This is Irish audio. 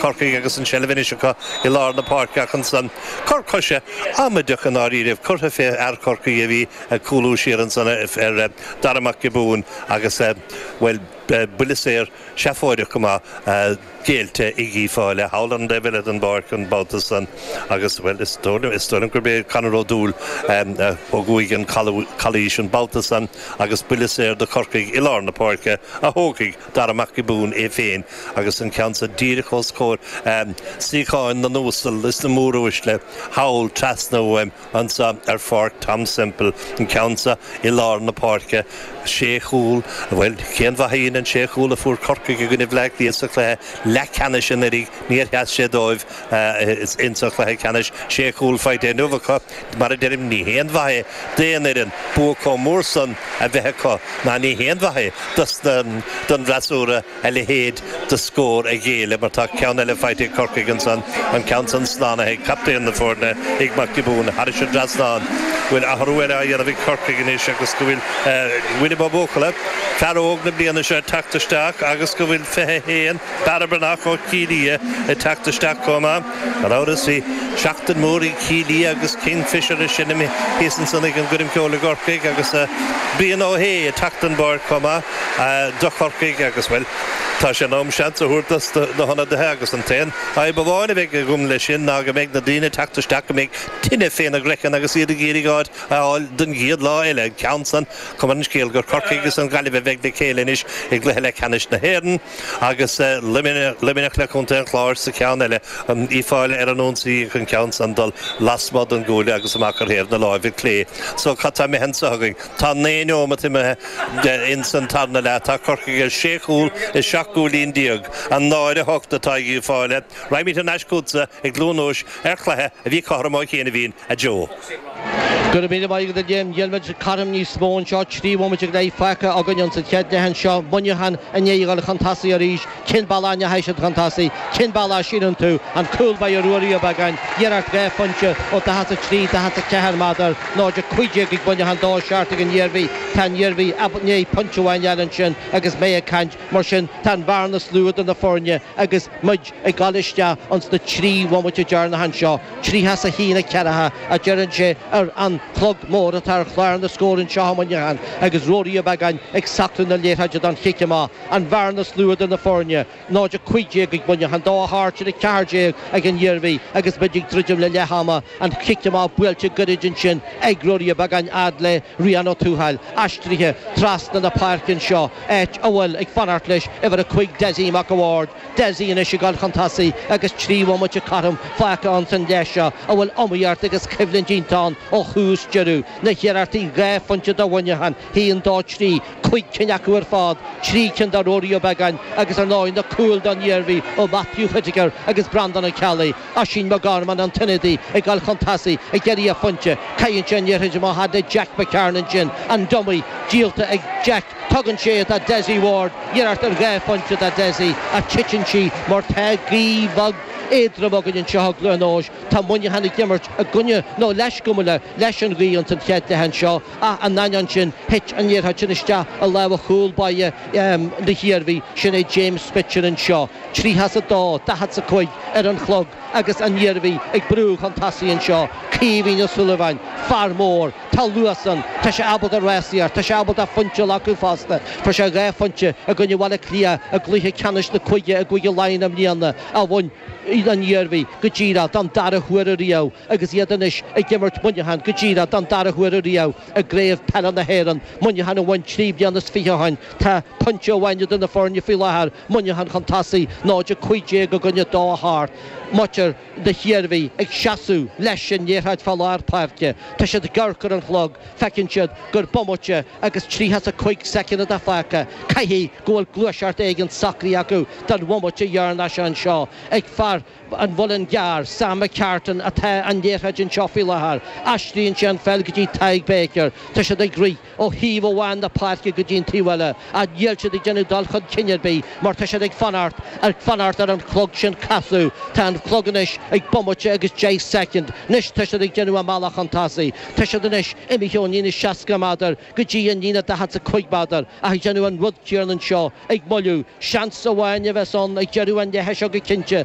Corcaigh agus an tseilbh anois acu i lár na páirce ach ansan, cor coise amaideach i ndáiríribh curtha fé fhear Chorcaí a bhí ag cúlú siar ansan ar Dhara Mac Giobúin agus, bhuel, buille saor seafóideach go maith géillte ag Uíbh Fhailí thall ar an taobh eile den bpáirc an babhta san agus, bhuel, is dóigh liom gurb é Conor Ó Dúill a thug uaidh an chalaois an babhta san agus buille saor do Chorcaigh i lár na páirce a thógfaidh Dara Mac Giobúin é féin agus an ceann seo díreach os comhair suíocháin na n-uasal is na móruaisle thall, trasna uaim anseo ar Pháirc Tom Semple, an ceann seo i lár na páirce. Sé chúl, bhuel, cén mhaith a dhein an sé chúl a fuair Corcaigh i gcoinne Bhleá Cliath sa chluiche leathcheannais anuraidh, níor sheas sé dóibh. Is ins an chluiche ceannais sé chúl faighte inniu acu. Mar a deirim, ní haon mhaith é d'aon fhoireann bua comh mór san a bheith acu, ná ní haon mhaith é don bhfreasúra a leithéid de scór a ghéilleadh, mar tá ceann eile faighte ag Corcaigh ansan, an ceann san slánaithe ag captaen na foirne, ag Mac Giobúin, thairis an dtrasnán. Go bhfuil athrú eile á dhéanamh ag Corcaigh anois agus go bhfuil William Ó Buachalla, fear óg na bliana seo, ag teacht isteach agus go bhfuil 21, Barra Breathnach ó Chill Ia ag teacht isteach chomh maith. Gan amhras bhí seachtain mhór ag Cill Ia agus Kingfishr ag seinm thíos ansan ag an gcoirm cheoil i gCorcaigh agus Brian Ó hAodha ag teacht ón bpáirc chomh maith do Chorcaigh agus, bhuel, tá sé in am seans a thabhairt dos na hionadaithe agus an t-aon fhadhb amháin a bheidh agam leis sin ná go mbeidh na daoine ag teacht isteach go mbeidh tine féna gcraiceann agus iad ag iarraidh áit a fháil don gcéad lá eile. An ceann san, cuma ar an scéal gur Corcaigh agus an Ghaillimh a bheidh le chéile anois i gcluiche leathcheannais na hÉireann. agus Luimneach le Contae an Chláir sa cheann eile, Uíbh Fhailí ar an ionsaí ach an ceann san dul lasmuigh den gcuaille agus amach ar thaobh na láimhe clé. So, cad tá imithe anseo againn? Tá naoi neomat imithe ins an tarna leath. Tá Corcaigh ar sé chúl is seacht gcúilín déag. A náid a hocht atá ag Uíbh Fhailí. Raghaimid thar n-ais chughatsa i gCluain Eois ar chluiche a bhí cothrom ó chianaibhín, a Joe. Go raibh míle maith agat a Liam. Níl muid cothrom níos mó anseo. Trí bhomaite go leith fágtha againn ins an chéad leath anseo. Muineachán i ndiaidh a dhul chun tosaigh arís. Cén bealach a ndeachaigh siad chun tosaigh? Cén bealach a shíleann tú? An cúl báire Rory Ó Beagáin, iarracht dhá phointe ó dhaichead a trí, daichead a ceathair méadar. 0-15 ag Muineachán, dó seacht ag an Iarmhí. Tá an Iarmhí i ndiaidh pointe amháin a fháil ansin agus mé ag caint. Mar sin tá an bhearna is lú idir na foirne agus. muid ag dul isteach ins na trí bhomaite deireanacha anseo, tríocha is a haon a ceathracha, a deireann sé, ar an chlog mór atá ar chlár na scór anseo i Muineachán agus Rory Ó Beagáin ag socrú na liathróide don chic amach, an bhearna is lú idir na foirne, 0 15 ag Muineachán, 2 8, sin 14 ag ag an Iarmhí agus muid ag druidim le leath ama, an chic amach buailte gairid ansin ag Rory Ó Beagáin fhad le Rian Ó Tuathail, aistrithe trasna na páirce anseo. áit a bhfuil ag fanacht leis uimhir a cúig Desi Mac a' Bhaird, Desi anois ag dul chun tosaigh agus trí bhomaite cothrom fágtha ann san leath seo a bhfuil iomaíocht agus coimhlint iontach ann ó thús deireadh, na hiarrachtaí dhá phointe do Mhuineachán, haon, dó, trí, cúig cinn acu ar fad, trí cinn do Ruairí Ó Beagáin agus ar ndóigh na cúil don Iarmhí ó Matthew Whittaker agus Breandán Ó Ceallaigh. Oisín McGorman, an t-ionadaí ag dul chun tosaigh ag iarraidh a phointe. Caitheann sé an liathróid amach fhad le Jack McCarron ansin, an dummy díolta ag Jack. Tugann sé é do Desi Ward, iarracht ar dhá phointe do Desi ach titeann sí mar tá gaoth bhog éadrom againn anseo i gCluain Eois. Tá Muineachán ag imirt i gcoinne, nó leis, gabh mo leithscéal, leis an ghaoth ins an chéad leath anseo ach in ainneoin sin thit an liathróid sin isteach i lámha chúl báire na hIarmhí, sin é James Mitchell anseo. Tríocha is a dó, daichead is a cúig ar an chlog agus an Iarmhí ag brú chun tosaigh anseo. Caoimhín Ó Súilleabháin, fear mór. Tá luas ann. Tá sé ábalta rásaíocht. Tá sé ábalta pointe a ghlacadh fosta. Fuair sé dhá phointe i gcoinne Bhaile Átha Cliath i gcluiche ceannais na cúige i gCúige Laighean i mbliana a bhain an Iarmhí go díreach don dara huair ariamh agus iad anois ag imirt Muineachán go díreach don dara huair ariamh i gCraobh Peile na hÉireann. Muineachán a bhain trí bliana is fiche ó shin. Tá pointe amháin idir na foirne faoi láthair. Muineachán chun tosaigh, 0 15 i gcoinne 2 8, muintir na hIarmhí ag seasamh leis an liathróid fá lár páirce. Tá siad ag amharc ar an chlog, feiceann siad gur bomaite agus tríocha a cúig soicind atá fágtha. Caithfidh go bhfuil gluaiseacht éigin socraithe acu don bhomaite dheireanach seo anseo ag fear An Mhuilinn gCearr, Sam McCartan atá an liathróid anseo faoi láthair. Aistríonn sé an pheil go dtí Tadhg Baker. Tá siad ag rith ó thaobh amháin na páirce go dtí an taobh eile ach níl siad ag déanamh dul chun cinn ar bith mar tá siad ag fanacht, ag fanacht ar an chlog sin casadh. Tá an chlog anois ag bomaite agus deich soicind. Anois tá siad ag déanamh a mbealach chun tosaigh. Tá siad anois imithe ón líne 60 méadar go dtí an líne 45 méadar ach ag déanamh an rud céanna anseo, ag moilliú. Seans amháin a bheas ann ag deireadh an leithe seo go cinnte.